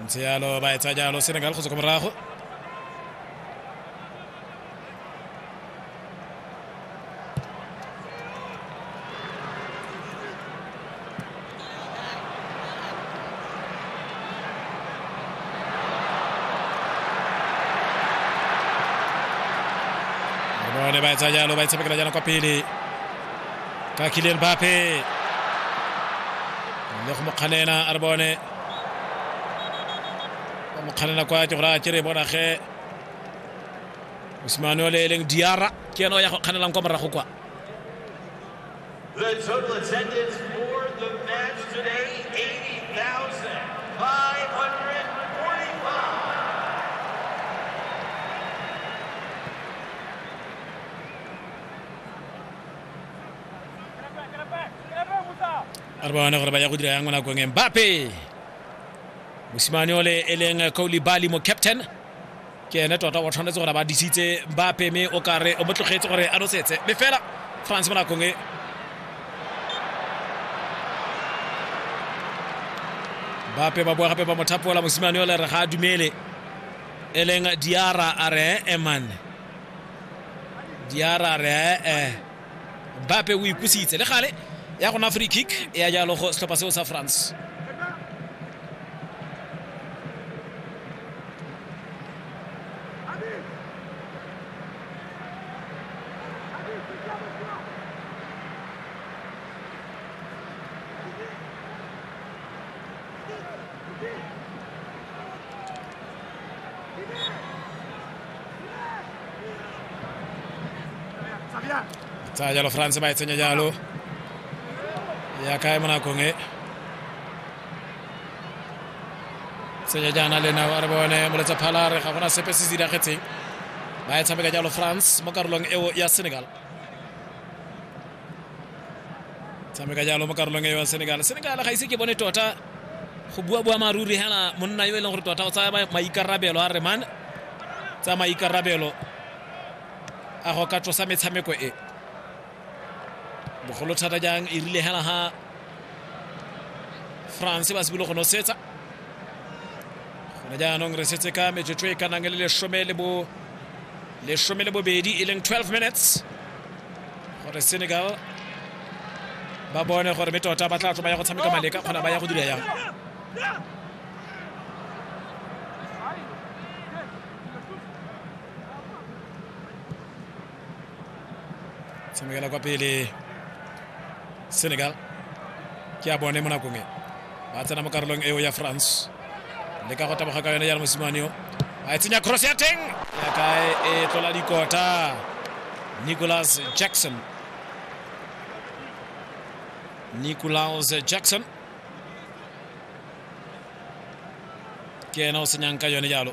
ntse yalo ba etsa jalo senegal go tswa kwa morago Mone ba e tsaya jalo ba e tshamekela jalo kwa pele ka Kylian Mbappe le go mokganena a re bone go mokganena kwa ke gore a ke re bona ge Osimane o le e leng Diarra ke ena o ya go kganelang kwa morago kwa The total attendance for the match today, 80,045. re bone gore ba ya go dira yang mo nakong embape mosimane ole e leng kaolibali mo captain ke ene tota o tshwanetse gore ba disitse ba peme o kare o mo tlogetse gore a nosetse mme fela france mo nakong e bape ba boa gape ba mothapola mosimane ole re ga a dumele e leng diara a re eman diara a re ee bape o ikusitse le gale ya gona free kick ya jalo go setlhopha seo sa france Tsa jalo France ba e tsenya jalo ya kae mo nakong e tsenya jaana le nao re bone moletsa phalare ga gona sepe se se diragetseng ba e tshameka jalo france mo karolong eo ya senegal tshameka jalo mo karolong e wa senegal senegal ga ise ke bone tota go bua bua maruri hela monna yo e leng gore tota o tsaya maikarabelo a re man tsa maikarabelo a go ka tlosa metshameko e bogolo thata jang e rile hela ha france ba sebile go nosetsa gone jaanong re setse ka metsotso e ka nang le lesome le bo lesome le bobedi e leng 12 minutes gore senegal ba bone gore me tota ba tla tlo ba ya go tshameka maleka kgona ba ya go dira yang tshamekela kwa pele senegal ke a bone mo nakong e ba tsena mo karolong eo ya france le ka go taboga ka yone jalo mosimane yo a e tsenya cross ya teng ya kae e tlola dikota nicholas jackson nicholas jackson ke ena o senyang ka yone jalo